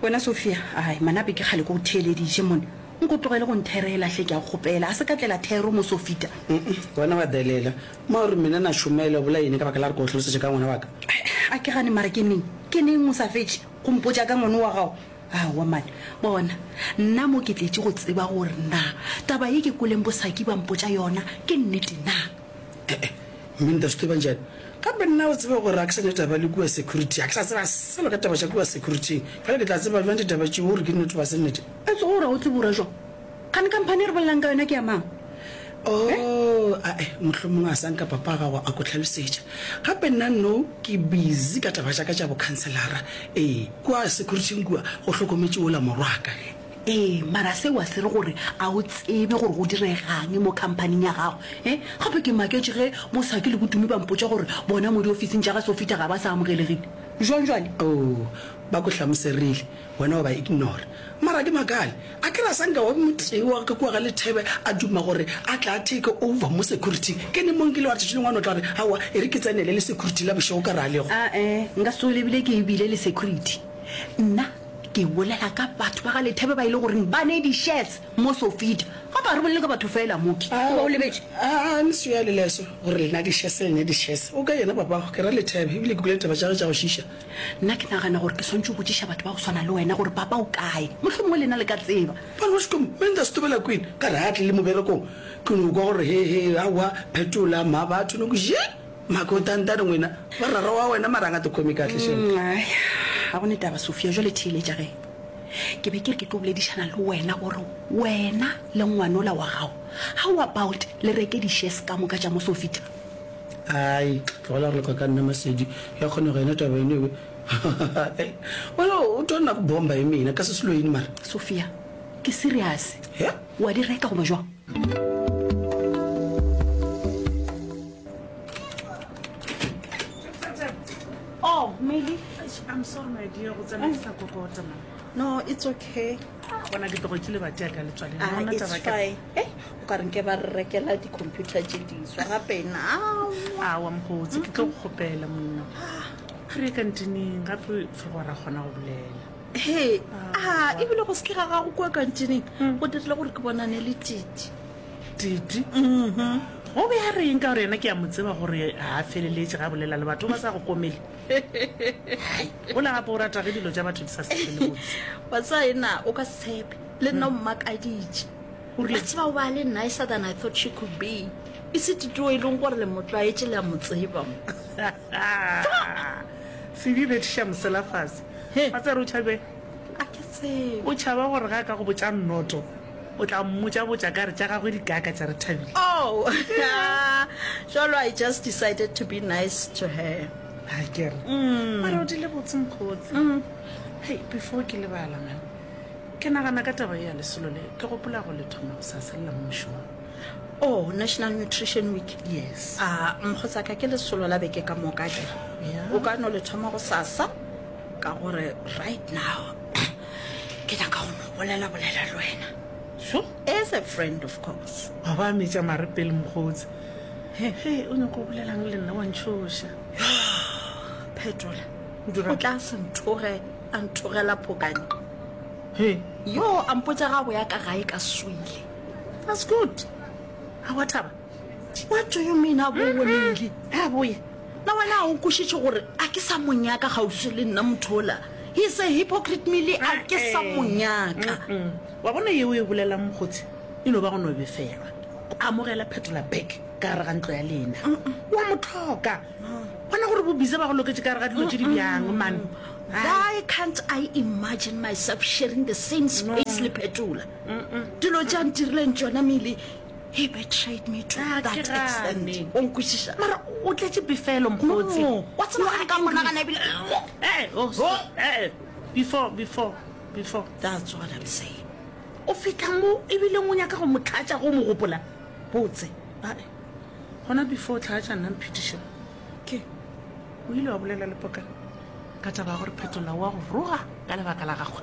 wena sophia ai manape ke kgale ko go theelediše mone nko tlogele go ntherela hle ke a kgopela a se ka tlela thero mo sofita wena wa delela ma gore mena na šomele bola ene ka baka la re ko tlhalosetše ka ngwana waka a ke gane mara ke neng ke neng o sa fetše go mpotša ka ngwane wa gago awa mane bona nna mo ke tletše go tseba gore na taba ye ke koleng bosaki ba mpotša yona ke nnete na E-e, mme nta Sthobantšane, gape nna o tseba gore ga ke sa nyaka taba le kua security, ga ke sa tseba selo ka taba tša kua security. Bjale ke tla tseba bjang ditaba tšeo gore ke nnete goba se nnete? E tlogo ra o tsebora jwang? Kgane khamphani e re bolelago ka yona ke ya mang? Oh, a-e, mohlomongwe a sa nka papa wa gago a ko hlalosetša. Gape nna nno ke busy ka taba tša ka tša bokhanselara. Ee, kua security-ing kua go hlokometše wola morwaka. Ee, mara seo a se re gore a o tsebe gore go diregang mo khamphaning ya gago. E, gape ke maketše ge Mosaki le Botumi ba mpotša gore bona mo diofising tša ga Sofita ga ba sa amogelegile. Bjang bjale? Oo, ba go hlamoserile, wena wa ba ignora. Mara ke makale, a ke re a sa nka wa be motee wa ka kua ga Lethebe a duma gore a tla a take over mo security-ing. Ke ne mo nkile wa re tšatši lengwe a no tla re, Aowa, e re ke tsenele le security la bošego ka ra lego. A-e, nka se tsoge lebile ke e bile le security nna. Ke bolela ka batho ba ga Lethebe ba e le goreng ba ne di-shares mo Sofita. Ga ba re bolele ka batho fela, Mooki. O ba o lebetše? Aa, ntsho ya leleso gore lena di-shares, lena di-shares. O ka yena papago, ke ra Lethebe, ebile ke kwele ditaba tša gagwe tša go šiiša. Nna ke nagana gore ke swantše o botšiša batho ba go swana le wena gore papa o kae. Mohlomongwe lena le ka tseba. Ba no škom me nda stobela kwin ka re ha tle le moberekong. Ke no kwa gore he he, aowa, phetola, mma batho no ku zhe. Mako tantane ngwena ba rara wa wena mara nga to khomi kahle shem. Aya ga gone taba Sophia jwale theeletša ge ke be ke re ke tlo boledišana le wena gore wena le ngwanola wa gago how about le reke di shares ka moka tša mo Sofita. Ai tlogela go leka ka nna Masedi ya kgonega yena taba eno ebe wena o tlo nna go bomba e mena ka se selo eng mara. Sophia ke serious wa di reka goba jwang. Oh, Meli, I'm sorry, my dear. Go tsena ke sa kokota ma. No, it's okay. Bona ke tlogo ke le bate ya ka le tswale. Ah, Bona it's taba ke- fine. Eh, o ka reng ke ba re rekela di-computer tše diswa gape now. Awa mokgotsi, ke tlo go kgopela monna. Re ye kantineng, gape fegora kgona go bolela. he a ebile go seke ga gago kua kantineng mm. go dirile gore ke bonane le titi titi mm-hmm. o be a reng ka gore yena ke ya mo tseba gore ga a feleletse ga bolela le batho ba sa go komele o le gape o rata ge dilo tsa batho di sa sefelebotse wa tsa ena o ka setshepe le nna o mm. mmakaditse batse bao ba le nicer than i thought she could be e se titio e leng gore le motlwaetse le a mo tseba Haa! Sedi bethiša mosela fase. Wa tseba gore o tšhabeng? A ke tsebe. O tšhaba gore ga a ka go botša nnoto, o tla mmotša-botša ka re tša gagwe di kaaka tša Rethabile. Oh! Jalo I just decided to be nice to her. A ke re? Mara o dile botse Mkhotsi. Hei, before ke lebala man, ke nagana ka taba ye ya lesolo le, ke gopola go le thoma go sa selela mo mošomong. Oh, National Nutrition Week. Yes. A mogotsaka ke lesolo la beke ka moka ke. Yeah. O ka no le thoma go sasa ka gore right now ke nyaka go mo bolela bolela le wena. So, as a friend of course. Wa ba metša mare pele mogotsi. He, he, o nyako bolelang le nna wa ntshoša. Phetola. O tla se nthoge a nthogela phokane. He. Yo, a mpotsa ga go ya ka gae ka swile. That's good. A wa taba? What do you mean a bo wonele? A boye. Na wena a o kushitše gore a ke sa monyaka gausi le nna mothola. He is a hypocrite mele a ke sa monyaka. Wa bona yeo e bolela mokgotsi e no ba go no befelwa. Amogela phetola back ka gare ga ntlo ya lena. Wa mothoka. Bona gore bo bize ba go loketše ka gare ga dilo tše di bjang man. Why can't I imagine myself sharing the same space le phetola? dilo tša ntirileng tšona mele he betrayed me to ah, that extent o nkwešiša mara o tletše befelo mokgotsi wa tsebaa ka monagana ebile oh, oh, eh, before before before that's what i'm saying o fitlha mo ebile o nyaka go motlhatša go mo gopola botse ae gona before tlhatša nna mphetiša ke o ile wa bolela le poka ka taba ya gore phetola wa go roga ka lebaka la gagwe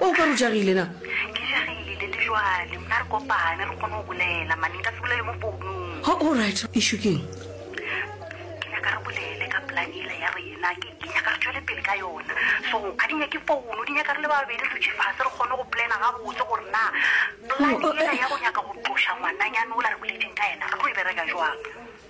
O ka re o jagile na? Ke jagile, Daddy. Jwale mna re kopane re kgone go bolela. Mane nka se bolele mo founung. Ha, all right. Issue ke eng? Ke nyaka re bolele ka plan yela ya rena. Ke, ke nyaka re tšwele pele ka yona. So, ga di nyake founu, di nyaka re le babedi re dutše fase re kgone go plana gabotse gore na plan yela ya go nyaka go tloša ngwananyane ola re boletšeng ka yena re tlo e bereka jwang.